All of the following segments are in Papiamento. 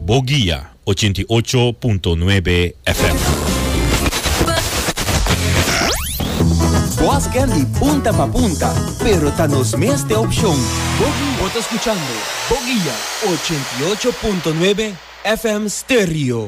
Bo guia ochenta i ocho punto nuebe FM. Bos ken di punta pa punta, pero ta nos mes te opshon Bo Guia. Bo ta skuchando Bo Guia ochenta i ocho punto nuebe FM Stereo.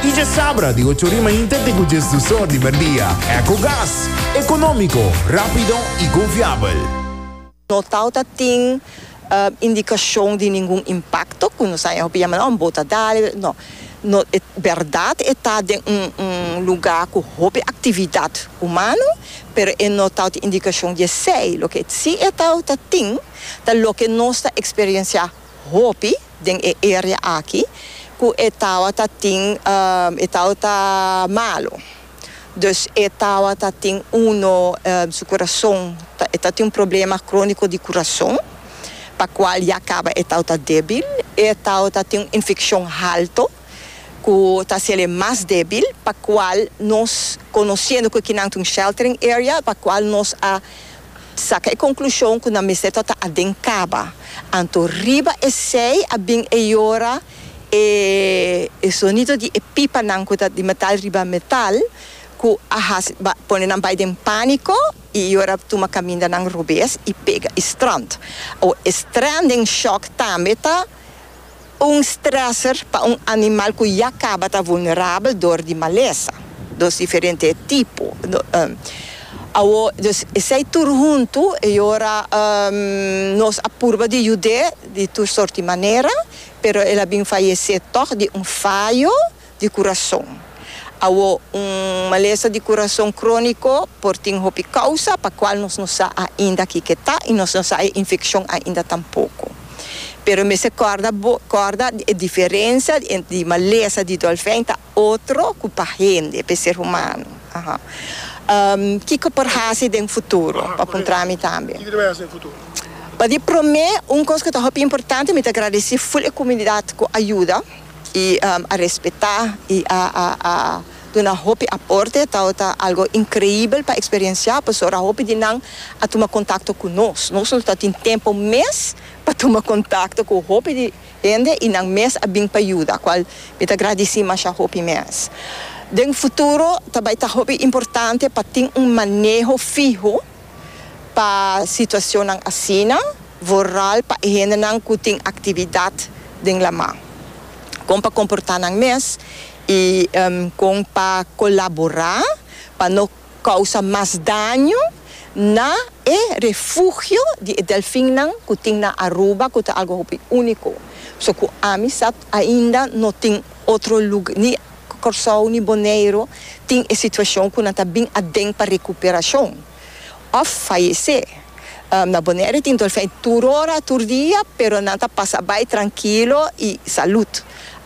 Y dje sabra di ocho ori mainta te cu djes dos or di merdia. Ecogas, economico, rapido y confiabel. No tau ta tin indicacion di ningun impacto cu no sa e hopi yama nan, bo ta dale, no. No, e berdad e ta den un un luga cu hopi actividad humano, pero e no tau tin indicacion di esey. Loke si e tau ta tin ta loke nos ta experiencia. hopi den e area aki ku e tawata tin e tawata malu dus e tawata tin uno su kurason ta e ta tin un problema kroniko di kurason pa kual ya kaba e tawata debil e tawata tin un infekshon halto ku ta hasel'e mas debil pa kual nos konosendo ku kinan ta un sheltering area pa kual nos a Saka e konklushon ku nan mester ta ta aden kaba. Anto riba esei a bin e yora e e sonido di e pipanan ku ta di metal riba metal ku a hasi ba pone nan bai den pániko i yora tuma kaminda nan robes i pega i strand. Awo e stranding shock tambe ta. Un stresser pa un animal ku ya kaba ta vulnerabel dor di malesa. Dos diferente e tipo. Awo, dus esei tur huntu e ora nos a purba di yud'é di tur sorti manera, pero el a bin fayesé tòg di un fayo di kurason. Awo, un malesa di kurason króniko por tin hopi kousa pa kual nos no sa ainda kiko ta i nos no sa e infekshon ainda tampoko. Pero mester kòrda bo kòrda di e diferensia di entre di malesa di dòlfèn ta otro ku pa hende, pa e ser humano. Aha. Kiko por hasi den futuro? Bo a puntra mi tambe. Pa di promé, un kos ku ta hopi importante, mi ta gradesí ful e kumunidat ku a yuda. i a respetá i a a duna hopi aporte taota algo inkreibel pa eksperensiá pasobra hopi di nan a tuma kontakto ku nos. Nos no ta tin tempu mes pa tuma kontakto ku hopi di hende i nan mes a bin pa yuda kual mi ta gradisí masha hopi mes. Den futuro ta bai ta hopi importante pa tin un maneho fiho. Pa situacionnan asina, vooral pa e hendenan cu tin actividad den Lamá, con pa comporta nan mes y con pa colabora pa no causa mas daño na e refugio di e delfinnan cu tin na Aruba cu ta algo hopi unico, so cu Amisat ainda no tin otro lugar. Kòrsou ni Boneiru tin e situashon ku nan ta bin aden pa rekuperashon òf fayesé. Na Boneiru tin dòlfèn tur ora, tur dia, pero nan ta pasa bai trankilo i salud.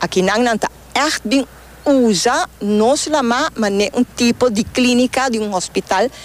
Akinan nan ta ègt bin usa nos lamá manera un tipo di klínika di un hòspital.